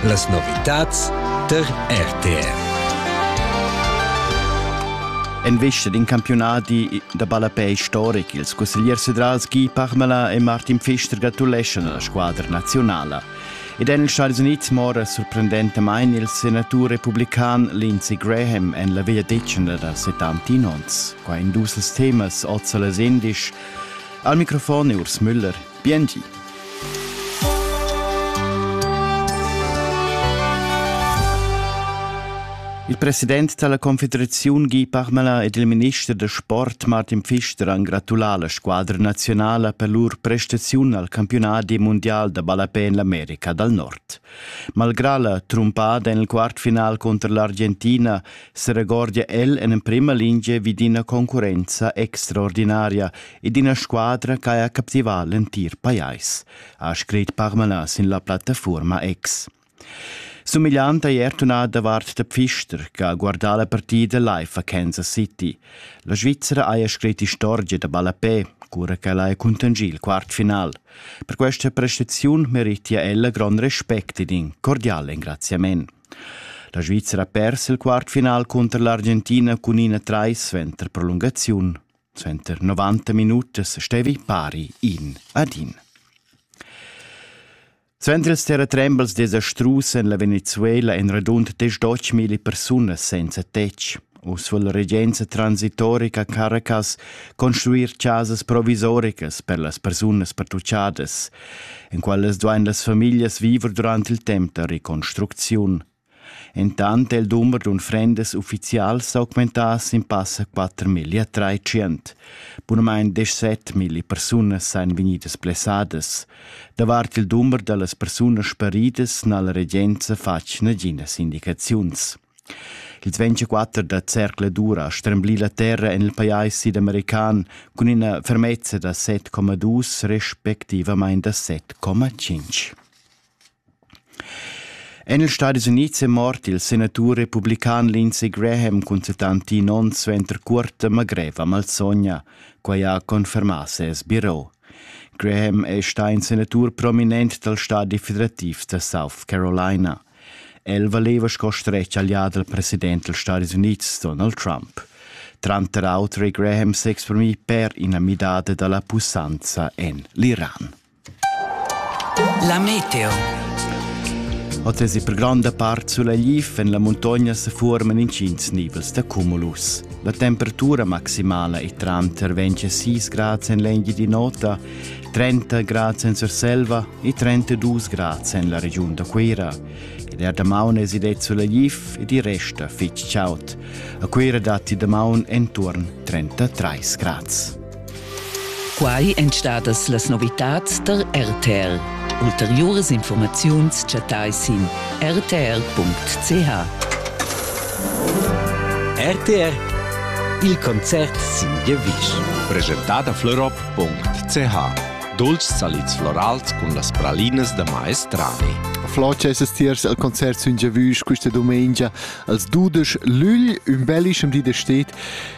Las novitads tar RTR. En vista d'in campiunadi da ballapei historic, ils cussegliers federals Guy Parmelin e Martin Pfister gratuleschan alla squadra nazionala. Ed en ils Stati Uniti mora sorprendentamain il senatur republican Lindsey Graham en la vegliadetgna da 70 onns. Qua in dus temas oz a las 11. Al microfon è Urs Müller. Bienti. Il president dalla Confederaziun Guy Parmelin ed il minister da sport Martin Pfister han gratulà la squadra nazionala per lur prestaziun al campiunadi mundial da ballapè en l'America dal Nord. Malgrà la trumpada en il quartfinal cunter l'Argentina seregordia el en emprima linea vid ina concurrenza extraordinaria ed ina squadra ch'haja captivà l'entir pajais, ha scrit Parmala sin la plattafuorma X. Sumigliant ei er tunà davart der Pfister, che ha guardà la partida live a Kansas City. La Svizzera haja scrit istorgia da ballapé, cura ch'ella ha contangì il quartfinal. Per questa prestaziun meritia ella grond respect ed in cordial engraziament. La Svizzera ha pers il quartfinal cunter l'Argentina cun ina trais suenter prolungaziun. Suenter 90 minutas stevi pari in ad in. Suenter ils terratrembels desastrus en la Venezuela èn radund 10.000 persunas senza tetg. Uss vul la regenza transitorica Caracas construir chasas provisoricas per las persunas pertuchadas, en quelles duain las famiglias viver durant il temp da reconstrucziun, Entant è il dumber d'unfrendas uffizials s'augmentà sin passa quatermillia tratschient. Bunamain deschset milli persunas sajan vegnidas blessadas. Davart il dumber da las persunas sparidas n'ha la regenza fatg naginas indicaziuns. Il 24 da zercladur ha stremblì la terra en il pajais sidamerican cun ina fermezza da 7,2 respectivamain da 7,5. En ils Stadis Unids è mort il senatur republican Lindsey Graham cun settantin onns suenter cuorta greva malsogna. Quai ha confermà ses biro. Graham è stà in senatur prominent dal stadi federativ da South Carolina. El valeva sco stretg allià dal president dals Stadis Unids Donald Trump. Tranter auter è Graham s'exprimì per ina midada da la pussanza en l'Iran. La meteo. Oz è per gronda part sulegl en la muntogna se forman intgins nibels da cumulus. La temperatura maximala è tranter 26 grads en l'engi di nota, 30 grads en Surselva e 32 grads en la regiun da Cuira. Der damaun es id sulegl ed i resta fitg chaud. A Cuira datti damaun entorn 33 grads. Quai èn stadas las novitads tar RTR. Ulteriuras informaziuns chattai sin rtr.ch. RTR Il concert sin giavisch. Preschentà da florop.ch Dolcis salids florals cun las pralinas da maestrani. Floce es tiers al concert sün Giavüsch questa domenica als dudesch lügl, ün bellischem di de steht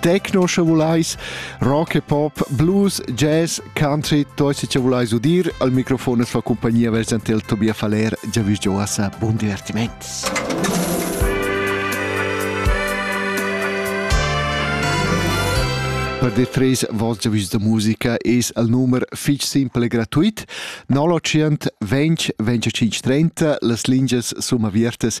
techno sche vulais, rock e pop, blues, jazz, country, toi se ci vulais udir, al microfon es fa compagnia versantel Tobias Faller, già vi gioasa, buon divertiments! Per de tres vostra vista musica es al numer fich simpel e gratuit 09 20 25 30 las lingias sum aviertas